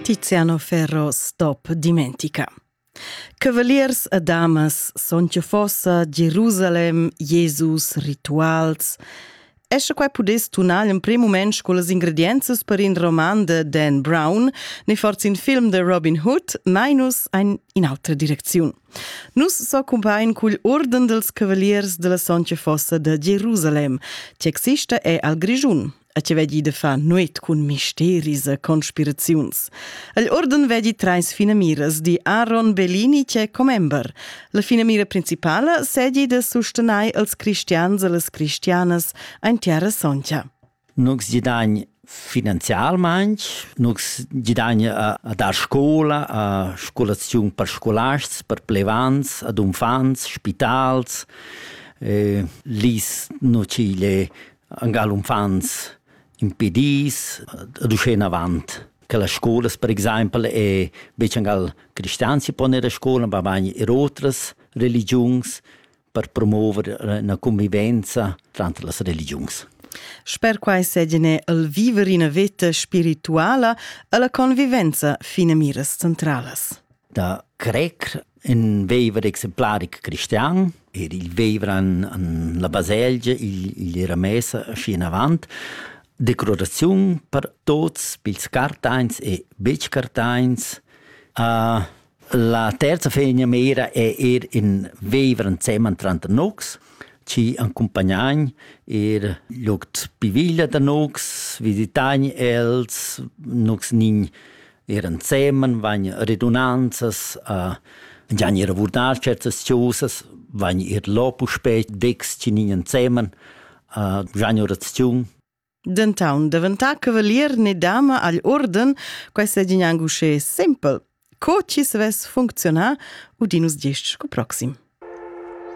Tiziano Ferro stop dimentica. Cavaliers e damas son che fossa Jerusalem, Jesus, rituals. Esce qua pudess tunal in prim moment con les ingrediences per in roman de Dan Brown, ne forza in film de Robin Hood, minus ein in altra direcziun. Nus so cumpain cugl orden dels cavaliers de la Sonche Fossa de Jerusalem, che exista è al Grigiun. a ce vedi de fa nuit cun misteris e conspiraziuns. El orden vedi treis finamiras di Aaron Bellini che commember. La finamira principala sedi de sustenai als cristians e las cristianas ein terra soncha. Nux gidagn finanzialmaing, nux gidagn a, a dar scola, a scolaziun per scolars, per plevans, ad unfants, spitals, eh, lis nocile angal uffants impedis ad usche enavant che las scolas per exaimpel e betg angal cristians si poner a scola ma bain er otras religiuns per promover una convivenza tranter las religiuns. Sper quai segine el viver ina veta spirituala e la convivenza finamiras centralas. Da crer in veiver exemplaric cristian ed il veiver an, an la baselgia igl, igl era messa schi avant declaraziun per tots pils cartains e betg cartains. Uh, la terza fegna mera è er in veiver ensemen tranter nocs, ci accompagnain er logt piviglia da nocs, visitain els, nocs nin Er ensemen vegn redunanzas a gianir a vurdar certas chosas, vegn ir lo puspè decs tginin ensemen a gianir oraziun. Dentaun deventà cavalier ne dama agl orden, questa è gnanc uschè simpel. Co ci svess funcziona, udinus gest scu proxim.